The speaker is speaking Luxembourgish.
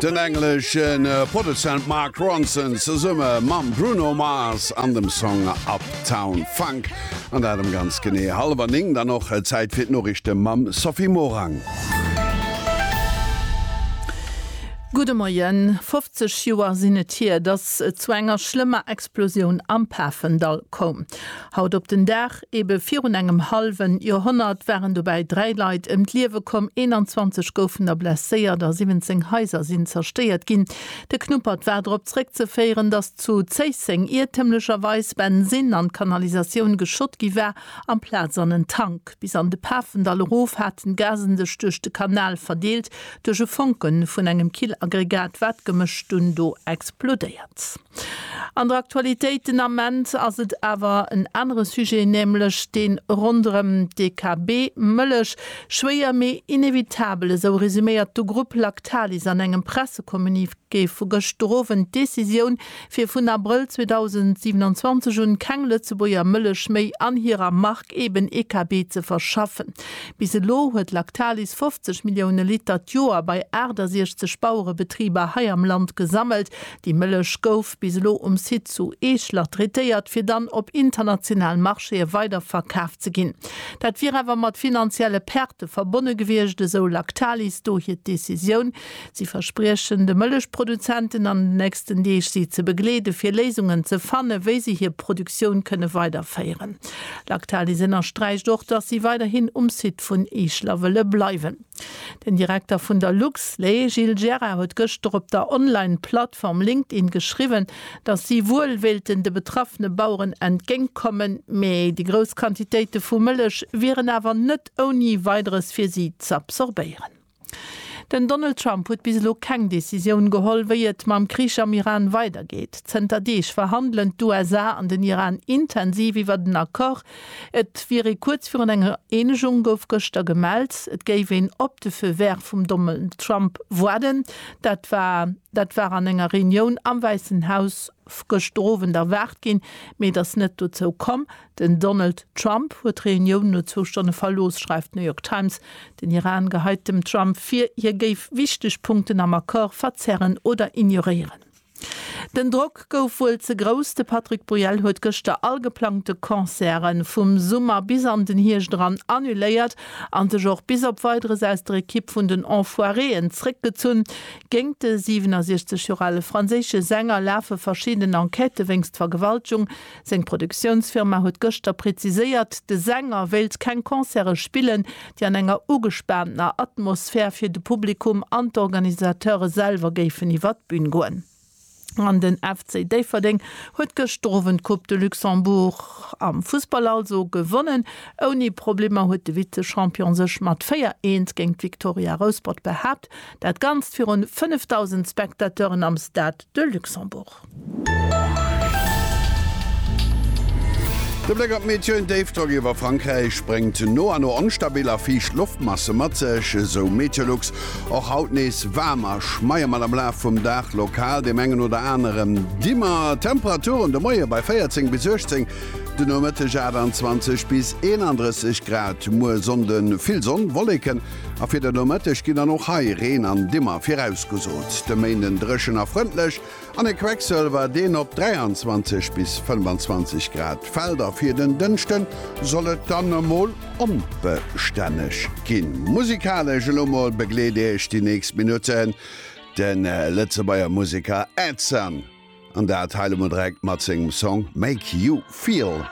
Den englesche Produzent Mark Ronson zesumme mam Bruno Mars an dem Song Uptown Funk. An dat ëm ganz genee hallwer 9. Dann och Zäit fir d'Noriichte mam Sophie Morang. Gudde Moien. 50 Joer sinn et hier, datt et zu enger schlëmmer Explosioun am Pafendall koum. Haut op den Dag Ebe virun engem hallwen Joerhonnert waren dobäi dräi Leit ëm d'Liewe komm, 21 goufen der blesséiert a 17 Haiser sinn zerstéiert ginn. De Knuppert war drop zeréckzeféieren, datt zu Zéisseng iertemlecherweis Bensin an d'Kanalisatioun geschott gi war, amplaz an en Tank. Bis an de Pafendall erof haten d'Gasen sech duerch de Kanal verdeelt. Duerch e Fonke vun engem Killaggregat war d'Gemësch dunn do explodéiert. An der Aktualitéit den Ament ass et awer en anere Sujet, nämlech dee ronderëm DKB Mëllech. Schwéier, mee inevitabel, esou resuméiert de Grupp Lactalis an engem Pressecommuniqué vu gëschter Owend d'Decisioun, fir vun Abrëll 2027 un keng Lëtzebuerger Mëllech méi an hirer Mark eben EKB ze verschaffen. Bis elo huet Lactalis 50 Millioune Liter d'Joer bei 68 Bauerebetriber hei am Land gesammelt. Déi Mëllech gouf bis elo um Site zu Eeschler traitéiert, fir dann op international Marchéë weider verkaf ze ginn. Dat wier awer mat finanzielle Perte verbonne gewiescht, esou Lactalis do hir Decisioun. Si verspriechen de Mëllechproduzenten an den nächsten Deeg si ze begleede fir Léisungen ze fanne wéi se hir Produktioun kënne weiderféieren. Lactalis ënnersträicht och, datt si weiderhin um Site vun Eeschler wëlle bleiwen. Den Direkter vun der Luxlé, Gilles Gerard, huet gëschter op der Online-Plattform LinkedIn geschriwwen, datt si wuel wéilten de betraffene Baueren entgéint kommen, mee déi grouss Quantitéite vu Mëllech wieren awer net ouni Weideres fir si z'absorbéieren. Den Donald Trump huet bis elo keng Decisioun geholl, wéi et mam Krich am Iran weidergeet. Zënter Deeg verhandelen d'USA an den Iran intensiv iwwert en Accord, Et wier ee kuerz virun enger Eenegung, gouf gëschter gemellt. Et géif een op de Feu vert vum Donald Trump waarden. Dat war dat war an enger Reunioun am Wäissen Haus gëschter Owend erwaart ginn, mee et ass net dozou komm. Den Donald Trump huet d'Reunioun no zwou Stonne verlooss, schreift d'New York Times. Den Iran geheit dem Trump vir, hie géif wichteg Punkten am Accord verzerren oder ignoréieren. Den Drock gouf wuel ze grouss, de Patrick Bruel huet gëschter all geplangte Concerte vum Summer bis an den Hierscht eran annuléiert a sech och bis op Weideres aus der Ekipp vun den Enfoiréen zréckgezunn. Géint de 67 Joer ale franséische Sänger lafe verschidden Enquête wéinst Vergewaltegung, Seng Produktiounsfirma huet gëschter präziséiert, de Sänger wéilt keng Concerte spillen, déi an enger ugespaantener Atmosphär fir de Publikum an d'Organisateure selwer géifen iwwer d'Bün goen. An den FC Déifferdeng huet gëschter Owend d'Coupe de Luxembourg, am Fussball also, gewonnen. Ouni Problemer huet de Vize-Champion sech mat 4, Eent géint d'Victoria Rouspert behaapt. Dat Ganzt virun 5.000 Spectateuren am Stade de Luxembourg. De Bléck op d'Meteo, En Déifdrock iwwer Frankräich bréngt no a no onstabil a fiicht Loftmasse mat sech, esou Meteolux. Och haut nees waarm a schmeie mat am Laf vum Dag lokal deem engen oder aneren Dimmer. Temperaturen de Moie bei 14 bis 18, de Nomëtteg 28 bis 31 Grad. Muer Sonnde vill Sonn, Wolleken a fir de Nomëtteg ginn dann och hei Reen an Dimmer virausgesot. De Méinden dréchen a frëndlech, An e Quecksëlwer, deen op 23 bis 25 Grad fält. A fir den Dënschden soll et dann emol onbestänneg ginn. Musikalesch elo mol begleet Iech déi nächst Minutten de Lëtzebuerger Museker Edson, an dat hei elo mol direkt mat sengem Song Make You Feel.